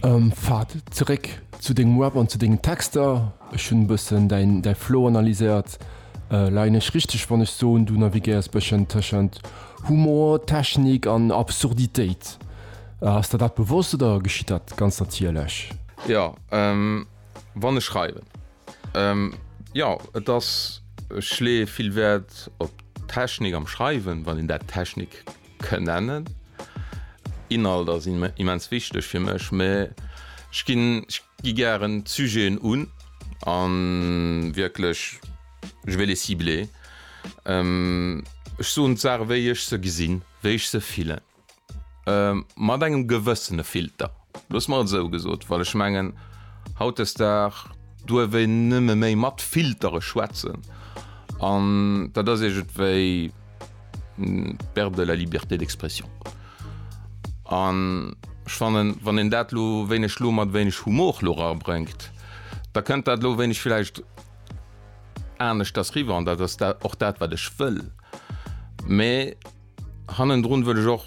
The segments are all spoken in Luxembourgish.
Ähm, Fahd, zeréck zu dengem Rap an zu dengen Texter. Ech hunn e bëssen däin, däi Flow analyséiert. Leien ech richteg, wann ech soen, du navigéiers e bëschen tëschent Humor, Technik an Absurditéit? Ass der dat bewosst oder geschitt dat ganz natierlech? Jo, wann ech schreiwen, jo. Et ass, ech leeë vill Wäert op d'Technik am Schreiwen, wann een dat Technik. kënnen. Inhalt ass immens wichteg fir mech, mä ech ginn, ech gi gären d'Sujeten un a wierklech, je vais les cibler. Ech soen d'Saache wéi ech se gesinn, wéi ech se fillen, mat engem gewëssene Filter, loosse mer et esou gesot, well ech mengen, hautdesdag duerf een nëmme méi mat Filtere schwätzen an dat ass iergendwéi. Perte de la liberté d'expression. An ech fannen, wann een dat elo wéineg lo mat wéineg Humor lo erabréngt, da kënnt dat elo wéineg villäicht aneschters riwwer. An dat ass och dat, wat ech wëll. Mee hannendrun wëll ech och,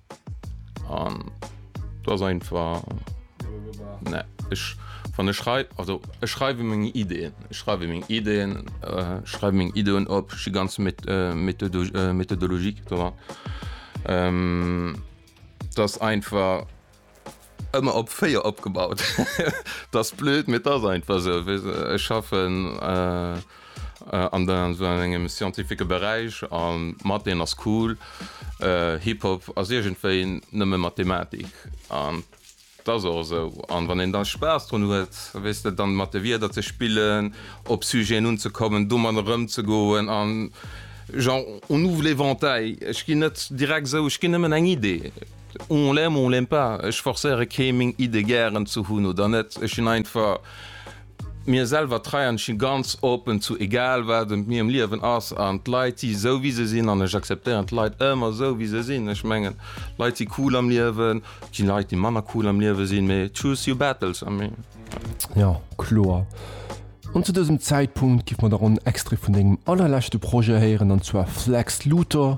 An do ass einfach ne ech wann ech schrei also ech schreiwe meng Ideen, ech schreiwe meng Ideen, äh, schreiwe meng Ideen op, ech gi ganz met äh, Methodo äh, Methodologie dra. Ähm, dat ass einfach Ëmmer op 4 opgebaut. T'ass blöd mee t'ass einfach sou. Ech schaffen an sou engem scientifique Beräich an d'Matheen ass cool. Hip Hop ass iergendwéi nëmme Mathematik an t'ass och esou. An wann een da Spaass drun huet, weess de, dann mat de Wierder ze spillen, op Sujeten unzekommen, domadder erëmzegoen an genre on ouvre l'éventail. Ech ginn net direkt sou, ech ginn nëmmen eng Idee. On l'aime ou on l'aime pas, ech forcéiere kee meng Iddë gären ze hunn oder net. Ech sinn einfach mir selwer trei an ech si ganz open zu egal wat ëm mir am Liewen ass. An d'Leit si sou wéi se sinn an ech acceptéieren d'Leit ëmmer sou wéi se sinn. Ech mengen Leit si cool am Liewen, et gi Leit déi manner cool am Liewe sinn, mee choose your battles a mee. Jo, kloer. An zu dësem Zäitpunkt giff mer da ronn en Extrait vun dengem allerleschte Projet héieren an zwar Flex Luthor.